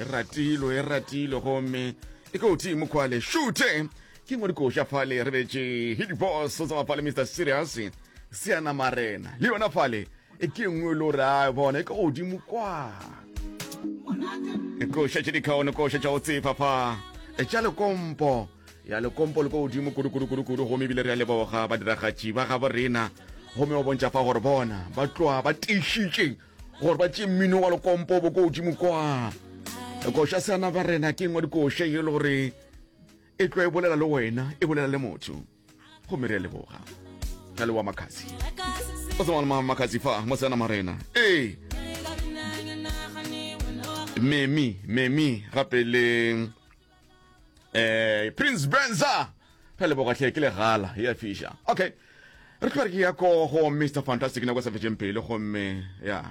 e ratilo e ratilo gomme e ke uthi mokhwale shute ke ngwe dikoša fale re betse hit boss o tsama fale mr serious seana marena le yona fale e ke ngwe lo re a bona e ke godimo kwa koša tše dikgaone koša tša go tsefa fa e tša lekompo ya lekompo le ko godimo kudu-kudu-kudu-kudu gomme ebile re ya leboga badiragatši ba gabo rena gomme ba bontšha fa gore bona ba tloa ba teišitše gore ba tše mmino wa lekompo bo ko godimo kwa koša seana ba rena ke ngwa dikoša e le gore e tlo e bolela le wena e bolela le motho go mere leboga ka le wa makhazi o tsama le makhazi fa mo seana marena ee memi memi gape le eh prince benza re leboga tlhe ke legala ya fisha okay re tlo re ke ya ko go mr fantastic nako sa fetšeng pele gomme ya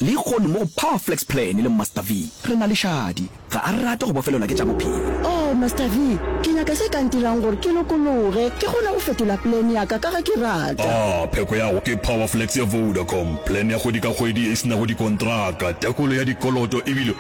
le kgono mo go power flex plan le master v re na le šadi ga a rate go bofelelwa ke tša bophelo oh master v ke nyaka se ka ntirang gore ke lokologe ke kgone go fetola plan yaka ka ge ke rata a pheko yago ke power flex ya vodacom plan ya kgwedi ka kgwedi e senago dikontraka tekolo ya dikoloto ebile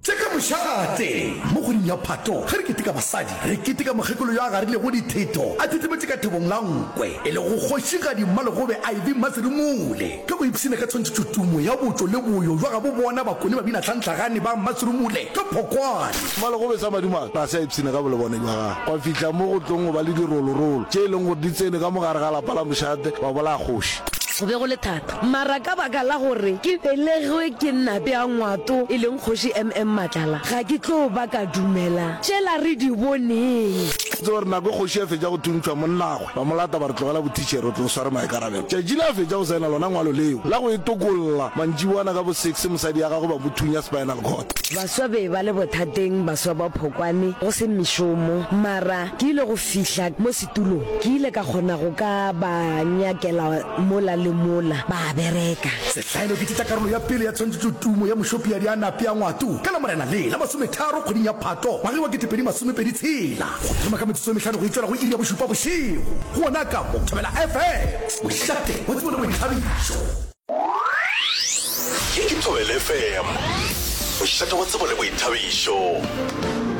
Tše ka mošate. Mo kgweding ya Phato, ge re keteka basadi, re keteka mokgekolo yo a garilego ditheto a thetemetše ka thobong la nkwe, e lego Kgošigadi Mmalegobe Ivy Mmasirumule. Ge o ipshina ka tshwantšhetšo tumo ya botšo le boyo bja gabo bona bakone babina tlhantlhagane ba Mmasirumule ka phokwane. Mmalegobe sa madimabe ga se a ipshina ka bolebone bja gagwe, gwa fihla mo go tlong go ba le dirolorolo tše e leng gore di tsene ka mo gare ga lapa la mošate wa bolaya kgoši. Go be go le thata Mara ka baka la gore ke belegwe ke Nnape ya Ngwato e leng Kgoši MM Matlala, ga ke tlo ba ka dumela tšela re di boneng. Ke tseba gore nako e kgoši a fetša go thuntšhwa, monnagwe ba mo lata ba re, Tlogela bothitšhere, o tlo sware maikarabelo. Tšatši le a fetša go saena lona ngwalo leo la go e tokolla, mantšiboana ka bo six mosadi ya gagwe ba mo thunya spinal cord. Baswa be ba le bothateng, baswa ba phokwane, go se mešomo. Mara ke ile go fihla mo. Tulo, Ke ile ka kgona go ka ba nyakela mola le mola, ba a bereka. Sehlaelo, Ke tšitša karolo ya pele ya tshwantšhetšo tumo ya mošopiadi a nape a ngwato ka Lamorena le la masometharo kgweding ya Phato ngwageng wa ketepedi masome pedi tshela go thoma ka metsotso e mehlano go e tšwela go iri ya bošupa bošego go ona ka mo Thobela FM mohlape wa tsebo le boithabišo. Ye ke Thobela FM mohlape wa tsebo le boithabišo.